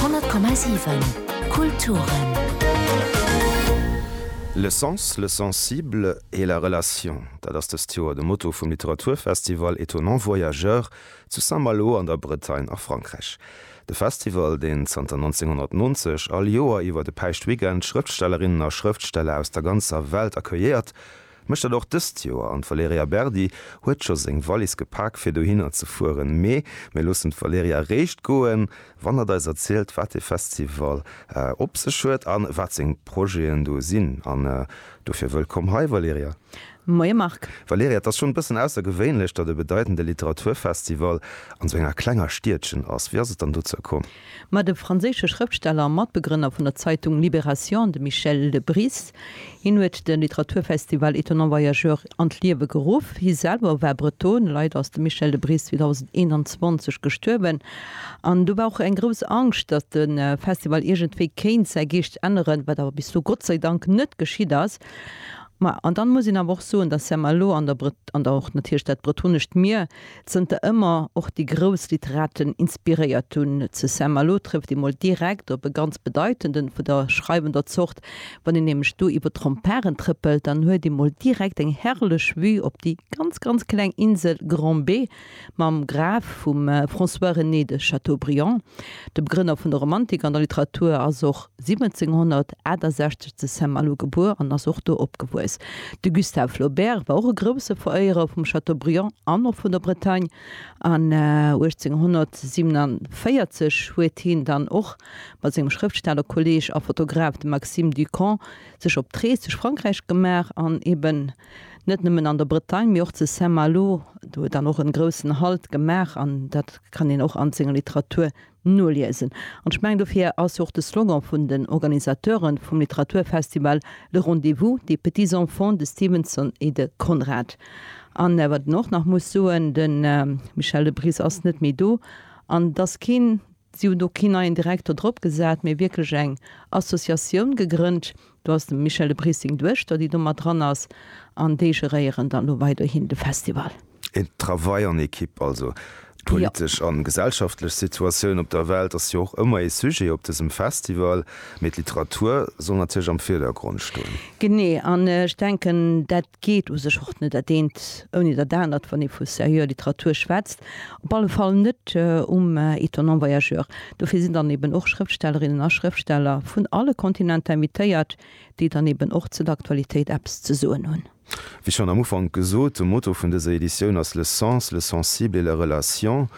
100,7 Kulturen. Le sens, le sensible et la relation, dat ass dëst Joer de Motto vum Literaturfestival Étonnants voyageurs zu Saint-Malo an der Bretagne a Frankräich. De Festival, deen zanter 1990 all Joer iwwer e Päischtweekend Schrëftstellerinnen a Schrëftsteller aus der ganzer Welt accueilléiert, Mécht dat och dëst Joer an d'Valerija Berdi huet scho seng Wallis gepak fir dohinner ze fueren. Mee mir loossen d'Valerija eréischt goen, wann hatt eis erzielt wat dee Festival op sech huet an wat seng Projeten do sinn. An dofir wëllkomm hei Valerija. Moie Marc. Valerija, et ass schonn e bëssen aussergewéinlech, datt e bedeitende Literaturfestival an esou enger klenger Stiedchen ass. Wéi ass et dann dozou komm? Ma de franséische Schrëftsteller a Matbegrënner vun der Zeitung Libération, de Michel de Bris, hien huet de Literaturfestival Étonnants Voyageurs an d'Liewe geruff. Hie selwer war Breton. Leider ass de Michel de Bris 2021 gestuerwen. An do war och eng grouss Angscht, datt de Festival iergendwéi kéint säi Geescht änneren, wat awer bis elo Gott sei Dank net geschitt ass. Ma, an dann muss een awer och soen, datt Saint-Malo an der, an och natierlech dat bretonescht Mier, zënter ëmmer och déi grouss Literaten inspiréiert hunn, zu Saint-Malo trëfft ee mol direkt op e ganz bedeitenden vun der schreiwender Zort. Wann een nämlech do iwwer d'Remparen trëppelt, dann huet ee mol direkt eng herrlech Vue op déi ganz, ganz kleng Insel Grand-B mam Graf vum François-René de Chateaubriand, dem Grënner vun der Romantik an der Literatur, ass och. 1768 zu Saint-Malo gebuer an ass och do opgewuess. De Gustave Flaubert war och e grousse Veréierer vum Chateaubriand an och vun der Bretagne an 1847 huet hien dann och mat sengem Schrëftstellerkolleg a Fotograf, dem Maxime du Camp, sech op d'Rees duerch Frankräich gemaach an eben net nëmmen an der Bretagne, mee och zu Saint-Malo do dann och e groussen Halt gemaach an dat kann een och an senger Literatur Noliesen. An ech mengen, dofir ass jo och de Slogan vun den Organisateuren vum Literaturfestival Le Rendez-vous des petits enfants de Stevenson et de Conrad. An wat een och nach muss soen, de Michel de Bris ass net méi do, an et ass keen, si hunn do keen neien Direktor drop gesat, mee wierklech eng Associatioun gegrënnt, Do ass dem Michel de Bries seng Duechter, déi do mat dran ass, an déi geréieren dann elo weiderhin de Festival. Een Travail en équipe also. D'politesch a gesellschaftlech Situatioun op der Welt ass jo och ëmmer ee Sujet op dësem Festival, mee d'Literatur soll natierlech am Virdergrond stoen. Genee, an ech denken dat geet u sech och net dat eent ouni dat anert, wann ee vu serieuxer Literatur schwätzt, op alle Fall net um Étonnant Voyageur. Dofir sinn dann eben och Schrëftstellerinnen a Schrëftsteller vun alle Kontinenter invitéiert, déi dann eben och zu der Aktualitéit eppes ze soen hunn. Wéi schonn am Ufank gesot, de Motto vun dëser Editioun ass Le sens, le sensible et la relation.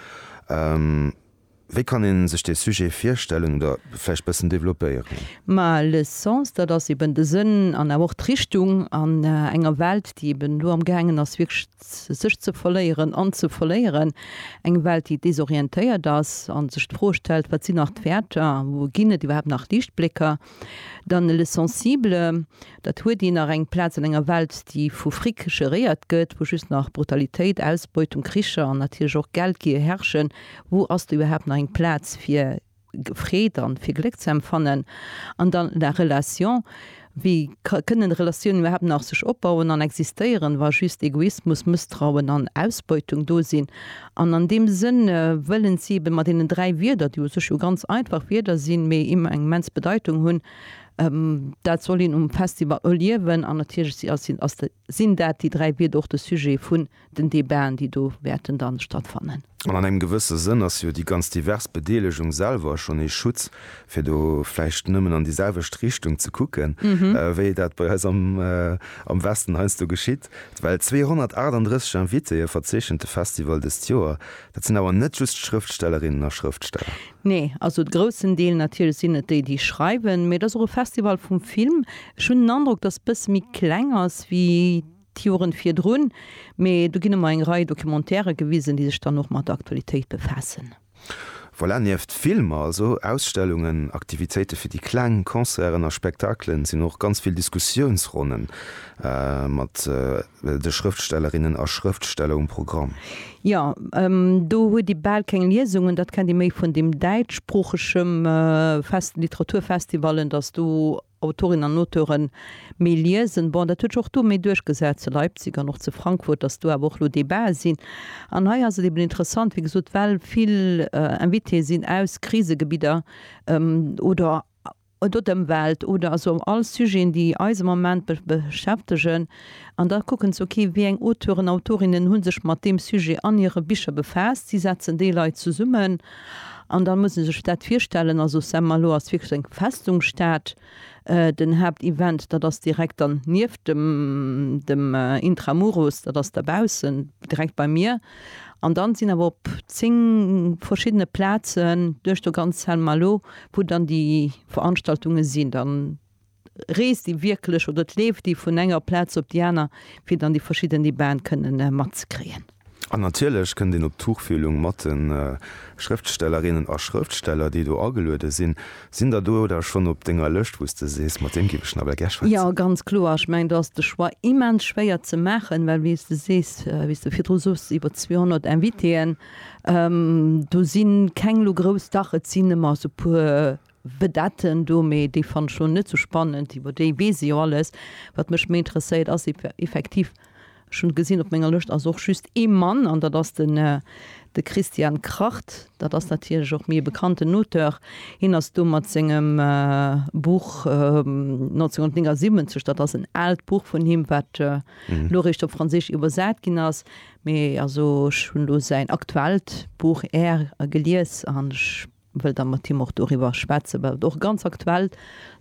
Wéi kann een sech dee Sujet virstellen oder vläicht bëssen developpéieren? Ma le sens, dat ass eben de Sënn an awer och d'Richtung an enger Welt, déi eben elo am gaangen ass wierklech sech ze verléieren an ze verléieren, eng Welt déi desorientéiert ass an sech d'Fro stellt, wat sinn nach d'Wäerter, wou ginn et iwwerhaapt nach Liichtblécker? Dann Le Sensible, dat huet een nach eng Plaz an enger Welt, déi vu Fric geréiert gëtt, wou just nach Brutalitéit, Ausbeutung, Kricher an natierlech och Geldgier herrschen. Wou ass do iwwerhaapt nach eng Plaz fir Freed an fir Gléck ze empfannen? An dann La Relation, wéi kënnen Relatiounen iwwerhaapt nach sech opbauen an existéieren, wa just Egoismus, Mësstrauen an Ausbeutung do sinn? An an deem Sënn wëllen si ebe mat deenen dräi Wierder, déi u sech jo ganz einfach Wierder sinn, mee eng immens Bedeitung hunn, dat soll een um Festival erliewen. An natierlech si ass, ass, sinn dat déi dräi Wierder och de Sujet vun den Debaten, déi do wäerten dann stattfannen. An an engem gewësse Sënn ass jo déi ganz divers Bedeelegung selwer schonn ee Schutz, fir do vläicht nëmmen an déi selwecht Richtung ze kucken, wéi dat bei eis am, am Westen heiansdo geschitt. Well 238 Invitéeë verzeechent de Festival dëst Joer. Dat sinn awer net just Schrëftstellerinnen a Schrëftsteller. Nee, also de groussen Deel natierlech sinn et déi, déi schreiwen. Mee et ass och e Festival vum Film. Ech hunn den Androck, datt e bësse méi kleng ass ewéi d'Joren virdrun. Mee do ginn ëmmer eng Rei Documentairë gewisen, déi sech dann och mat der Aktualitéit befaassen. Voilà, nieft Filmer, also Ausstellungen, Aktivitéite fir déi Kleng, Concerten a Spektakelen, sinn och ganz vill Diskussiounsronne mat de Schrëftstellerinnen a Schrëftsteller um Programm. Jo, do huet ee bal keng Liesungen, dat kennt ee méi vun deem däitschsproochege festen Literaturfestival, datt do Autorinnen an Auteuren méi liesen, bon, dat huet sech och do méi duerchgesat zu Leipzig an och zu Frankfurt, dass do awer och elo Debatë sinn. An hei ass et eben interessant, wéi gesot, well vill Invitéë sinn aus Krisegebidder oder oder d'Ëmwelt oder also all Sujeten, déi eis am Moment beschäftegen. An da kucken se, ok, wéi eng Auteuren, Autorinnen hu sech mat deem Sujet an hire Bicher befaasst. Si setzen déi Leit zesummen an da muss ee sech dat virstellen, also Saint-Malo ass wierklech eng Festungsstad. Den Haaptevent, dat ass direkt dann nieft dem, dem Intramuros, dat ass dobaussen, direkt beim Mier. An dann sinn awer op zéng verschiddene Plazen duerch do ganz Saint-Malo, wou dann déi Veranstaltunge sinn. reest déi wierklech oder et leeft déi vun enger Plaz op déi aner, fir dann déi verschidden Debaten kënnen matzekriegen. An natierlech kënnt een op d'Tuchfühlung mat de Schrëftstellerinnen a Schrëftsteller, déi do ageluede sinn. Sinn der do da schonn op denger Lëscht, wou s de sees, mat deem géif ech nawell gär schwätzen? Jo, ganz kloer. Ech mengen, do ass de Choix immens schwéier ze maachen, well wéi s de sees, wéi s de virdru soss, iwwer 200 Invitéen, do si keng elo grouss, dach et sinn ëmmer esou e puer Vedetten do, mee déi fannen ech elo net sou spannend. Iwwer déi weess ee jo alles. Wat mech méi interesséiert ass effektiv, ech hunn et gesinn op menger Lëscht ass och just ee Mann an dat ass den, de Christian Kracht. Dat ass natierlech och méi e bekannten Auteur. Hien ass do mat sengem Buch 1979, dat ass en aalt Buch vun him, wat elo eréischt op Franséisch iwwersat ginn ass. Mee also ech hunn elo säin aktuellt Buch, Air, gelies an ech wëll da mat him och doriwwer schwätzen, well et och e ganz aktuelle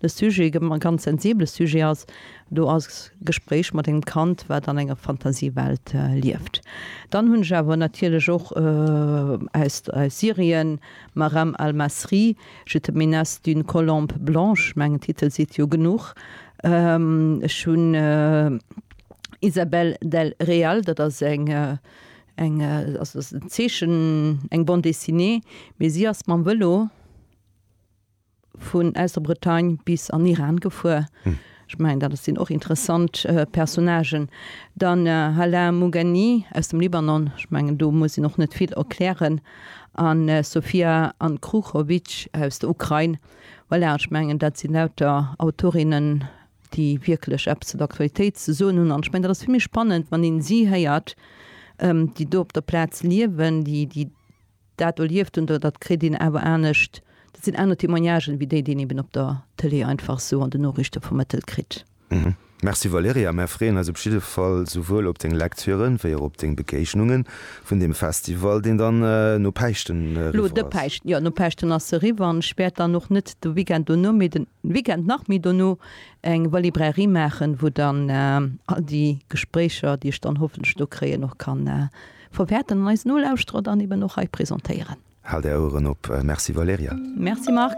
Sujet, e ganz sensibele Sujet ass, do ass Gespréich mat engem Kand, wat an enger Fantasiewelt lieft. Dann hunn ech awer natierlech och aus Syrien, Maram al-Masri, Je te menace d'une colombe blanche, mengen Titel seet jo genuch. Ech hunn Isabel del Real, dat ass eng Eng ass e Zeechen, eng Bande dessinée, mee si ass mam Vëlo vun aus der Bretagne bis an Iran gefuer. Ech mengen, dat sinn och interessant Personnagen. Dann Halaa Mugani aus dem Libanon, ech mengen, do muss een och net vill erklären, a Sofia Ankruchovic aus der Ukrain. Voilà, ech mengen, dat si lauter Autorinnen déi wierklech eppes zur Aktualitéit ze soen hunn. An ech mengen, dat ass vill méi spannend, wann een si héiert, déi do op der Plaz liewen, déi, déi dat erlieft hunn. Dat kritt een awer anescht, dat sinn aner Témoignagen, wéi déi, déi een eben op der Tëlee einfach sou an den Noriichte vermëttelt kritt. Merci Valerija, mär freeën eis op jidde Fall souwuel op deng Lektüren, wéi och op deng Begeegnunge vun deem Festival, deen dann no Päischten eriwwer ass. Elo de Päischten, jo, no Päischten ass se eriwwer. An ech wäert dann och net de Weekend dono, mee den Den Weekend nach méi dono eng Valibrairie maachen, wou dann all déi Gespréicher, déi ech dann hoffentlech do kréien, och kann verwäerten an eis Nolauschterer dann eben och hei presentéieren. Haalt Är Oueren op. Merci Valerija. Merci Marc.